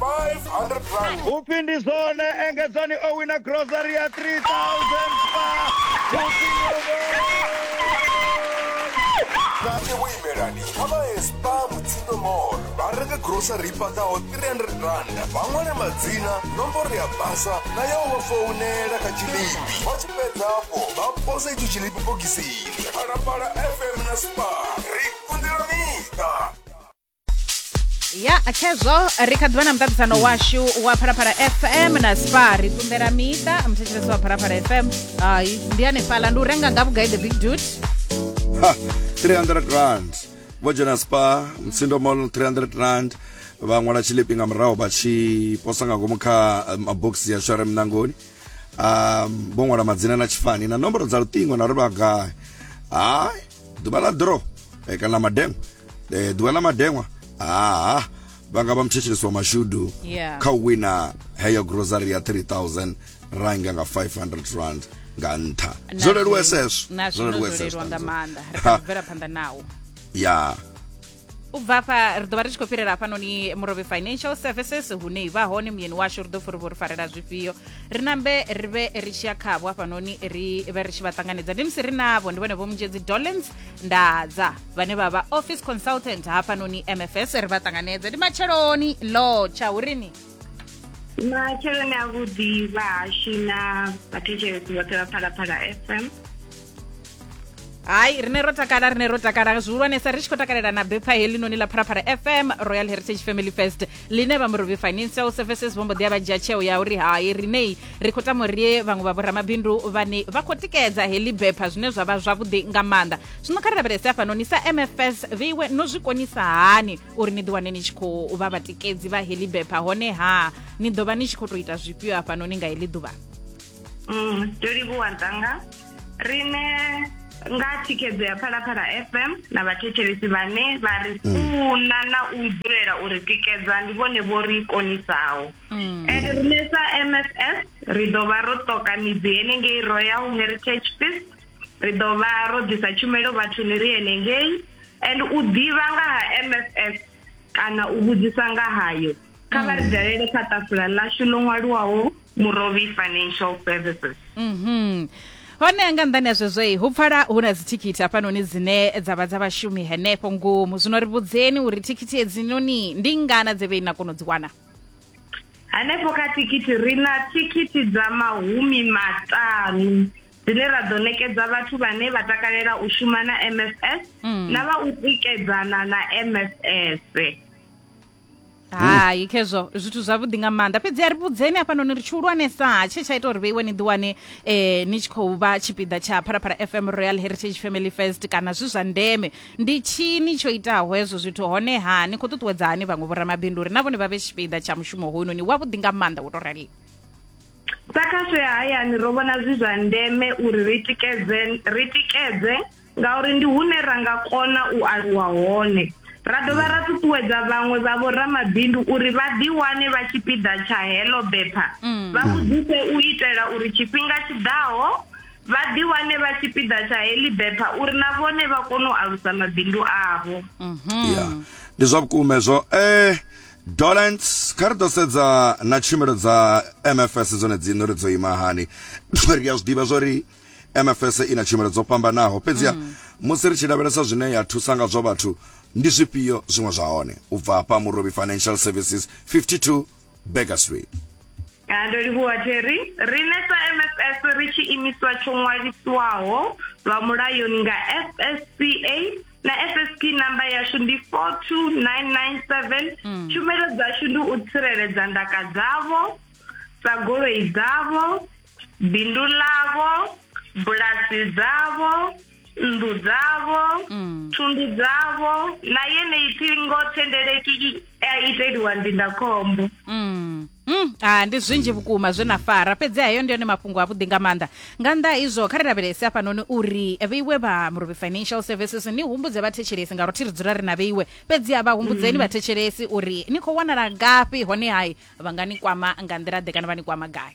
500 rand upfi ndi zwone engedzani o wina grocery ya 3000 pa kanti vhuimelani kha vha ye spa mutsindo mall vha renge grocery i paḓaho 300 rand vha ṅwale madzina nomboro ya basa na ya u vha founela kha tshilipi vha tshi fhedza afho vha pose itsho tshilipi bogisini phalaphala fm na spa ri kundelaniḓa ya khezwo ri kha ḓivha na muṱaṱisano washu wa phalaphala fm na spa ri ṱunḓela miṱa muthetshelesi wa phalaphala fm hai ndi hanefhaḽa ndi u renga nga vhugai the big dut 300 rand vho dzhena spa mtsindo mall 300 rand vha ṅwala tshilipi nga murahu vha tshi posa nga ngomu kha eh, mabokisi ya share mnangoni um vho ṅwala madzina na tshifani na nomboro dza luṱingo na ri vha gai hai ḓuvha ḽa dro eh, kana mademo eh, ḓuvha ḽa madeṅwa haa vha nga vha muthetshelesi wa mashudu yeah. kha u wina heyo grocery ya 3000 ranga nga 500 rand nga nṱha zwo leluwa eseswo zwo leluwa eseswo nga maanḓa ri khou bvela phanḓa nawo ya u bva afha ri ḓo vha ri tshi khou fhirela hafhanoni murovhe financial services hune i vha hone muyeni washu ri ḓo furi vho ri farela zwifhio ri nambe ri vhe ri tshi ya khavho hafhanoni ri vhe ri tshi vha ṱanganedza ndi musi ri navho ndi vhone vho munzhedzi dolens ndadza vhane vha vha office consultant hafhanoni mfs ri vha ṱanganedze ndi matsheloni lo tsha urini matsheloni a vhuḓi vha hashu na vhathetshelesi vhoṱhe vha phalaphala fm hayi rine ro takala rine ro takala zwihulwanesa ri tshi khou takalela na bepha helinoni ḽa pharapara fm royal heritage family fest ḽine vha morobi financial services vho mbo ḓi a vha dzhia tsheo ya uri hai rinei ri khou tama uri vhaṅwe vha vhoramabindu vhane vha khou tikedza heḽi bepha zwine zwa vha zwavhuḓi nga maanḓa zwino kha ri lavhelese hafhanoni sa mfs vheiwe no zwi konisa hani uri ni ḓiwane ni tshi khou vha vhatikedzi vha heḽi bepha hone ha ni ḓo vha ni tshi khou tou ita zwifhio hafhanoni nga heḽi ḓuvha mm, ndo livhuwa dzanga rine nga thikhedzo ya phalaphala fm na vhathetshelesi vhane vha ri mm. funa na u dzulela uri tikedza ndi vhone vho ri konisaho mm. and rine sa mss ri ḓo vha ro ṱoka midzi henengei royal heritage fist ri ḓo vha ro ḓisa tshumelo vhathuni ri henengei and u ḓivha nga ha mss kana u vhudzisa nga hayo kha vha ri dalele kha ṱafula ḽashu ḽo ṅwaliwaho murovhi financial services mhm hone nga nḓani ya zwezwo hu pfala hu na dzithikhithi hafhanoni dzine dza vha dza vhashumi henefho ngomu zwino ri vhudzeni uri thikhithi hedzinoni ndi ngana dze vhe na kona u dzi wana hanefho kha thikhithi ri na thikhithi dza mahumi maṱanu dzine ra ḓo nekedza vhathu vhane vha takalela u shuma na mss mm. na vha u tikedzana na mss hai khezwo zwithu zwavhuḓi nga maanḓa fhedzi a ri vhudzeni hafhanoni ri tshi hulwanesa tshe tsha ita uri vheiwe ni ḓiwane um ni tshi khou vha tshipiḓa tsha phalaphala fm royal heritage family first kana zwi zwa ndeme ndi tshini tsho itaho hezwo zwithu honeha ni khou ṱuṱuwedza hani vhaṅwe vhoramabindu uri na vhone vha vhe tshipiḓa tsha mushumo hoyunoni wavhuḓi nga maanḓa wo tou raliwo sa khasho ya hayani ro vhona zwi zwa ndeme uri ri tikedze ri tikedze ngauri ndi hune ra nga kona u aluwa hone ra dovha ra ṱuṱuwedza vhaṅwe vha vhoramabindu uri vha ḓiwane vha tshipiḓa tsha heḽo bepha mm. vha vhudzise u itela uri tshifhinga tshi ḓaho vha ḓiwane vha tshipiḓa tsha heḽi bepha uri na vhone vha kone u alusa mabindu avho mhm. ndi zwa vhukuma hezwo um dolent kha ri ḓo sedza na tshumelo dza mfs dzone dziṋe uri dzo ima hani ri a zwi ḓivha zwo ri MFS i na tshumelo dzo fhambanaho, fhedziha mm. musi ri tshi lavhelesa zwine ya thusa nga zwo vhathu, ndi zwifhio zwiṅwe zwa hone? U bva hafha Murobi Financial Services 52 Baker Street. Ah, ndo livhuwa jerry riṋe sa mfs ri tshi imiswa tsho ṅwalisiwaho lwa mulayoni nga fsca na fsp namba yashu ndi 42997 mm. tshumelo dzashu ndi u tsireledza ndaka dzavho sa goloi dzavho bindu ḽavho bulasi dzavho nnḓu dzavho mm. thundu dzavho na yeneyi ṱhingo thendeleki a iteliwa ndindakhombo mm. Mm, ah, ndi zwinzhi vhukuma zwe na fara fhedzi hayo ndi yone mafhungo avhuḓi nga maanḓa nga nnḓa izwo kha ri lavhelese hafhanoni uri vheiwe vha murobe financial services ni humbudze vhathetshelesi ngauri thi ri dzula ri na vheiwe fhedzi a vha humbudzeni mm. vhathetshelesi uri ni khou wanala ngafhi hone hai vha nga ni kwama nga nḓila ḓe kana vha ni kwama gai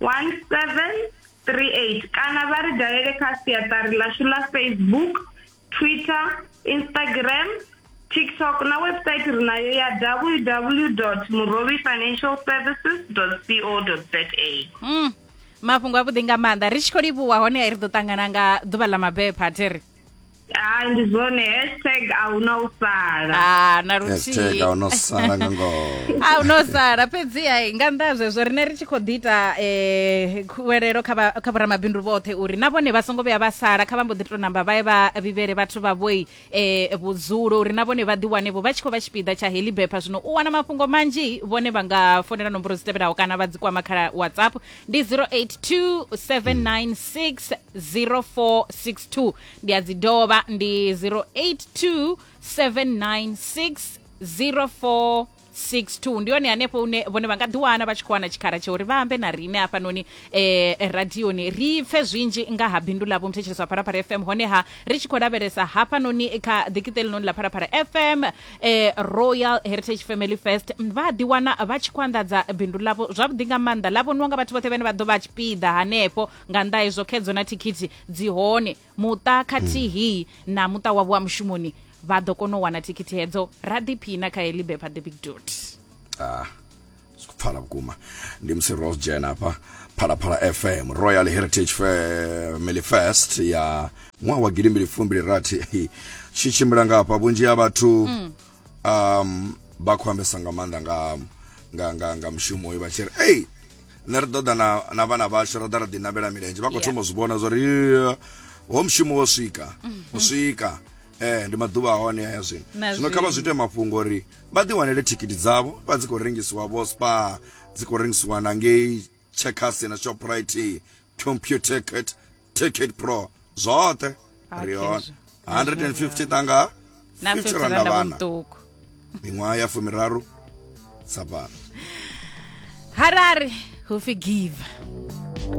1738 kana vha ri dalele kha siaṱari ḽashu ḽa facebook twitter instagram tiktok na website ri nayo ya www murovi financial services co za mm. mafhungo avhuḓi nga maanḓa ri tshi khou livhuwa hone ri ḓo ṱangana nga ḓuvha ḽa mabepha theri Ah, ndi zwone hashtag a hu na u sala Ah, na luthihi hashtag a no sala nga ngoho a no sala fhedzi ai nga nnḓa ha zwezwo rine ri tshi khou ḓi ita um khuwelelo kha vha- kha vhoramabindu vhoṱhe uri na vhone vha songo vhuya vha sala kha vha mbo ḓi to namba vha ye vha vhivhele vhathu vha vhoi um vhudzulo uri na vhone vha ḓiwanevho vha tshi khou vha tshipiḓa tsha heḽi bepha zwino u wana mafhungo manzhi vhone vha nga fonela nomboro dzi tevhelaho kana vha dzi kwama kha whatsapp ndi 0827960462 ndi a dzi dovha ndi 0827960462 62 ndi yone hanefho une vhone vha nga ḓiwana vha tshi khou wana tshikhala tsha uri vha ambe na riṋe hafhanoni eh, radioni ri pfe zwinzhi nga ha bindu ḽavho muthetshelesi wa pharapara fm honeha ri tshi khou lavhelesa hafhanoni kha ḓikiṱe ḽinoni ḽa pharapara fm eh, royal heritage family fest mm, vha a ḓiwana vha tshi khou anḓadza bindu ḽavho zwavhuḓi nga maanḓa ḽa vhoniwa nga vhathu vhoṱhe vhane vha ḓo vha tshipiḓa hanefho nga nnḓa hezwo khedzo na thikhithi dzi hone muṱa khathihi na muṱa wavho wa mushumoni vha ḓo kona u wana thikhithi hedzo ra ḓiphina kha heḽi bepha the big dot ah. pfala vhukuma ndi musi ro dzhena hafha phalaphala fm royal heritage family fest ya ṅwaha wa gidimbili fumbili rathi tshi tshimbila nga hafha vhunzhi ha vhathu um, vha khou ambesa nga maanḓa nga, nga, nga, nga mushumo uyu vha tshi ri ei nṋe ri ḓoḓa na, na vhana vhashu ra ḓa ra ḓinavhela milenzhe vha khou Yeah. thoma u zwi vhona zwa uri "Yeah, ho mushumo wo swika u swika eh ndi maḓuvha a hone haya zwino Na zwino kha vha zwi zwino. ite mafhungo uri vha ḓi wanele thikhithi dzavho vha dzi khou rengisiwa vho spa dzi khou rengisiwa na ngei checkers na shoprite computer ticket ticket pro zwoṱhe Okay, ri hone zwo- 150 tanga na 50 50 randa randa vhana vhuṱuku miṅwaha ya fumiraru sa fhano harare hu forgive